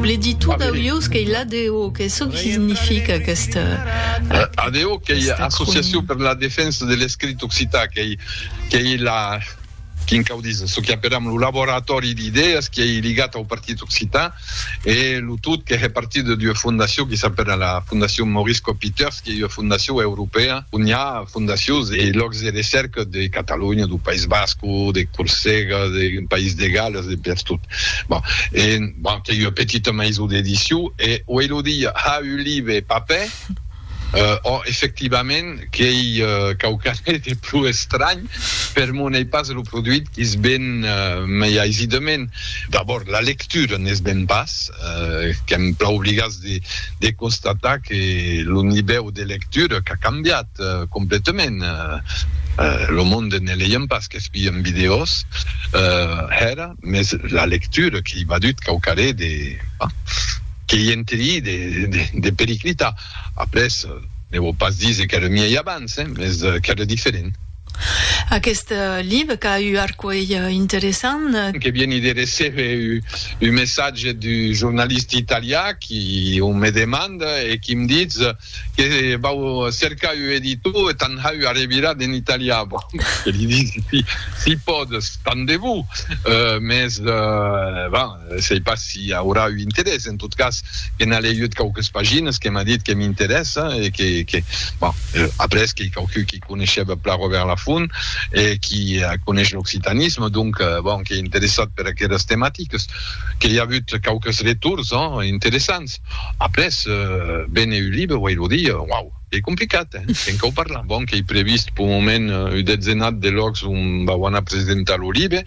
Bledi tot d'aulhos qu'ei l'ADO, que çò que significa aquesta... ADO qu'ei Associacion per la Defensa de l'Escrit Occitan, qu'ei la, quin cau díser, çò qu'aperam lo laboratòri d'idèas qu'ei ligat au Partit Occitan e lo tot que hè partida d'ua fondacion que s'apèra la Fondacion Maurice Copyter, Qu'ei ua fondacion europèa on i a fondacions e lòcs de recèrca de Catalonha, dau País Basco, de Corsega, deu País de Galles, de pertot. Bon, e bon, qu'ei ua petita maison d'edicion e o ei lo dia ha un live e papè, ò, efectivament, qu'ei quauquarre de pro estranh, per mon ei pas lo produit qu'i's ven mei aisidament. D'abòrd, la lectura ne's ven pas, qu'èm plan obligats de constatar que lo nivèu de lectura qu'a cambiat completament. Lo monde ne leiem pas, qu'espien vidèos hèra, mes la lectura que i vadut quauquarré de, bah, que i enterí de, de periclitar. Après, ne vò pas díser qu'èra miei abans, hein, mes qu'èra diferent. Aquest live qu'a u arcuelh interessant. Que vieni de recebe un messatge d'un jornalista italià qui o me demanda e qui me ditz que vau cercar un editor e t'an hau arrevirat en italià. Bon, que li disi, si pòdes, tant de bo, mès bon, sei pas si aurà un interès. En tot cas, que n'a leiut quauques paginas, que m'a dit que m'interèssa e que bon, après qu'ei quauqui qui. coneishèba plan Robèrt Lafont e qui coneish l'occitanisme, donc bon, qu'ei interessat per aqueras tematiques, que i a avut quauques retors interessants. Après, véner un libre, uèi lo di, uau, qu'ei complicat, eh? Qu'en cau parlar. Bon, qu'ei previst pel moment un detzenat de lòcs on vau anar presentar lo libre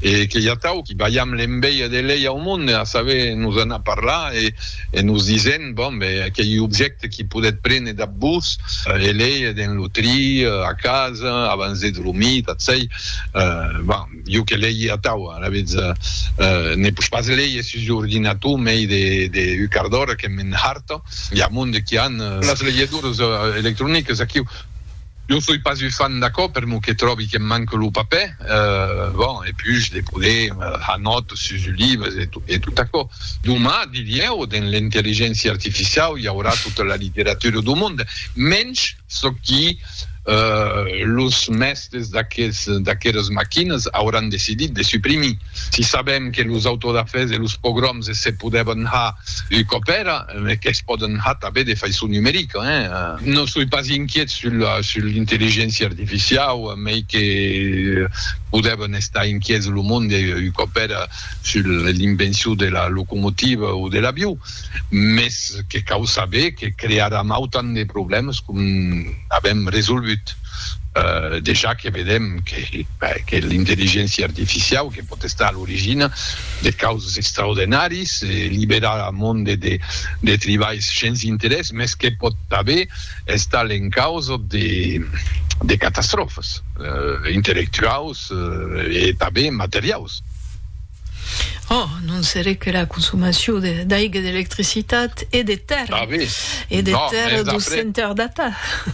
e qu'ei atau qui balham l'enveja de lei au monde, a saber, nos anar parlar e nos disent, Bon, ben, aquei objècte que podètz prene dab vos e lei dens lo tri, a casa, abans de dromir, tot çai. Bon, jo que lei atau, alavetz, ne pos pas leir sus l'ordinator mei de un quart d'ora que m'enharta. I a monde qui an las leiadoras electronicas aquiu. Jo soi pas u fan d'aquò per mo que tròbi que'm manque lo papè, bon, e pus de poder far nòt sus u libres e tot aquò. Doma, dirieu, dens l'intelligéncia artificiau i aurà tota la literatura do monde, mensh çò qui los mèstes d'aqueras maquinas auràn decidit de suprimir. Si sabèm que los autodafès e los pogroms se podèvan har un còp èra, me que's pòden har tanben de faiçon numerica, hein? Non soi pas inquiet sul sul l'intelligéncia artificiau, mei que podèvan estar inquiets lo monde un còp èra sul l'invencion de la locomotiva o de l'avion. mès que cau saber que crearàn autant de problèmes com n'avèm resolgut. Dejà que vedèm que l'intelligéncia artificiau que pòt estar a l'origina de causes extraordenàris e liberar eth monde de tribalhs shens interès, mès que pòt tanben estar l'encausa de catastròfes intelectuaus e tanben materiaus. Oh, non seré que la consomacion d'aiga, d'electricitat e de terra, e de terra 200 data.